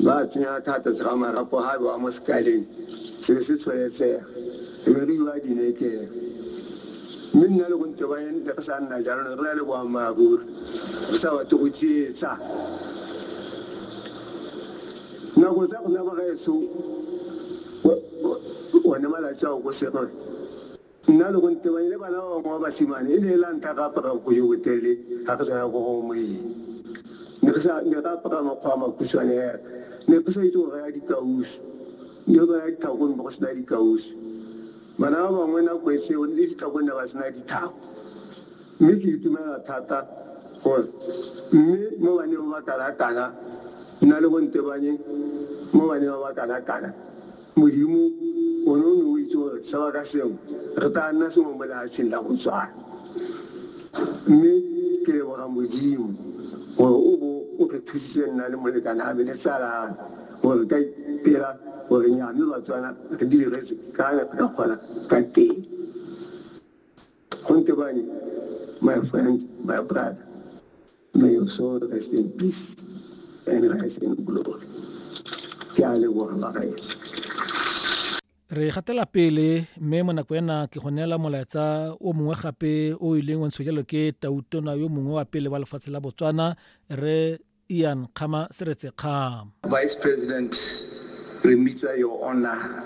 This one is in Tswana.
Ba tsenya ka fa tlase ga marapo ga bewa mo sekaleng se be se tsholetsega, e be re iwa dinekeng. Mme nna le go nte ba ente re sa nna jalo, ne re na le boammaaruri, re sa batle go tsietsa. Nako tsa rona bagaetsho, one malatsi ao ko Serwe. Nna le Gontebanye le bana ba bangwe ba basimane e ne e la ntlha re apara bonkwe jo botelele ga re tsena ko go moeng. Ne re apara makgwa a makhutshwane hela. Ne re sa itse go raya dikausu. Ne re raya ditlhako ne go sena dikausu. Bana ba bangwe nako e seo le ditlhako ne ba sena ditlhako. Mme ke itumela thata gore mme mo baneng ba ba kana-kana, nna le Gontebanye mo baneng ba ba kana-kana, Modimo, o ne o ne o itse gore seo ka seo re tla nna sengwe mo lehatsheng la Botswana. Mme ke leboga Modimo gore o bo o re thusitse nna le molekane ame le tsala ame gore re ka ipela gore nya mme Batswana re diretse ka ne re ka kgona ka teng. Gonte bane, my friend, my brother, may your soul rest in peace and rise in glory. Ke a leboga bagaetsi. Re gatela pele mme mo nako ena ke go neela molaetsa o mongwe gape o ileng wa ntsho jalo ke tautona yo mongwe wa pele wa lefatshe la Botswana re Ian Kgama Seretse Kgama. Vice President, re mmitsa Your Honor